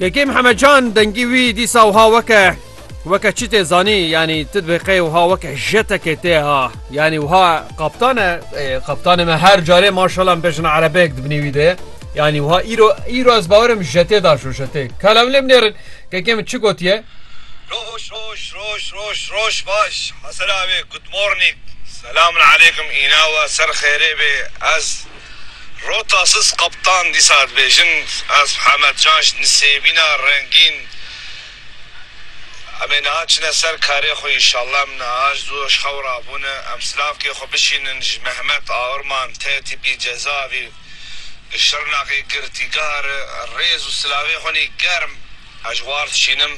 Kekê Mihemed Can dengî wî dîsa wiha weke weke çi tê zanî yanî ti dibê qey wiha weke jetekê tê ha yanî wiha qaptane qaptanê me her carê maşala me bejina erebeyek dibinî wî de yanî wiha îro îro ez bawerim jetê da şo jetê kalam lê binêrin kekê min çi gotiye Roj roj roj roj roj baş Hesera wê good morning Selamun aleykum îna we ser xêrê bê ez Rota siz qeptan dîsa dibêjin ez Hemed Can ji nisêbîna rengîn Em ê niha çine ser karê xwe înşallah em niha ji dû xew re bûne em silavkê xwe bişînin ji Mehmet Aurman tê tîpî cezavî li Şirnexê girtîgah re rêz û silavê xwe nî germ ez ji war dişînim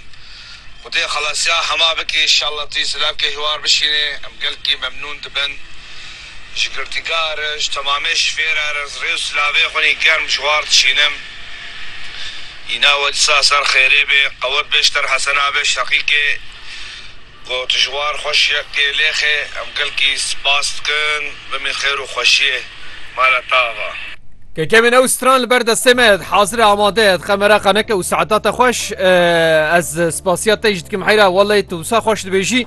Xwedê xelasiya hema bike înşallah tu yî silavkê ji war bişînê em gelkî memnûn dibin. Ji girtîka erij, temamê şifêr erij, rê û silavê xwînî germ ji war dişînim. Îna we disa ser xêrê bê, qewet bê ji ter Hesena bê Şeqîkê. Got, Ji war xweş yekê lêxê, em gelkî spas dikin, bimîn xêr û xweşiyê ma re tava. Kekemên ew stran li ber destê me ye, hazir e, amade ye, dixe me re qeneke û saetata xweş. Ez spasiya te jî dikim heyra, welay tu wisa xweş dibêjî.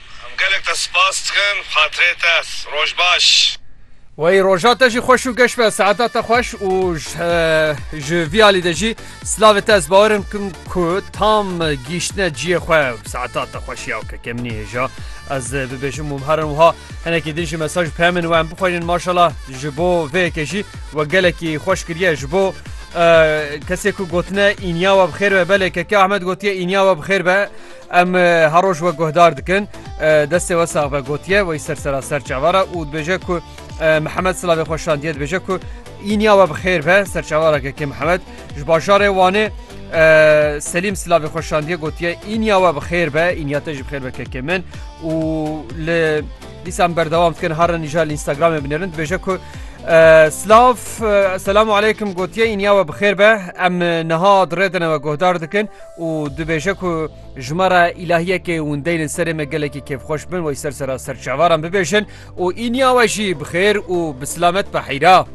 Em gelek te spas dikin xatirê te. Roj baş. Wey roja te jî xweş û geş be saeta te xweş û ji vî alî de jî slavê te ez bawerim kim ku tam gîştine ciyê xwe saeta te xweş ya ke kemnî hêja ez bibêjim û herin wiha henekî din jî mesaj pemên we em bixwînin maşala ji bo vêyekê jî we gelekî xweş kiriye ji bo kesê ku gotine înya we bi xêr be belê keke Ahmed gotiye înya we bi xêr be Em her roj we guhdar dikin. Destê we sax be gotiye wey ser sera ser çavara û dibêje ku Mihemed silavê xwe şandiye dibêje ku îniya we bi xêr be ser çavara kekê Mihemed ji bajarê Wanê Selîm silavê xwe şandiye gotiye îniya we bi xêr be îniya te ji bi xêr be kekê min û li dîsan berdewam dikin harin îja li Instagramê binêrin dibêje ku Slav selamu aleykum gotiye îniya we bi xêr be em niha dirêdine we guhdar dikin û dibêje ku ji me re îlahiyekê windeyl in serê me gelekî kêfxweş bin wey ser sera serçevaran bibêjin û îniya we jî bi xêr û bi silamet behîra.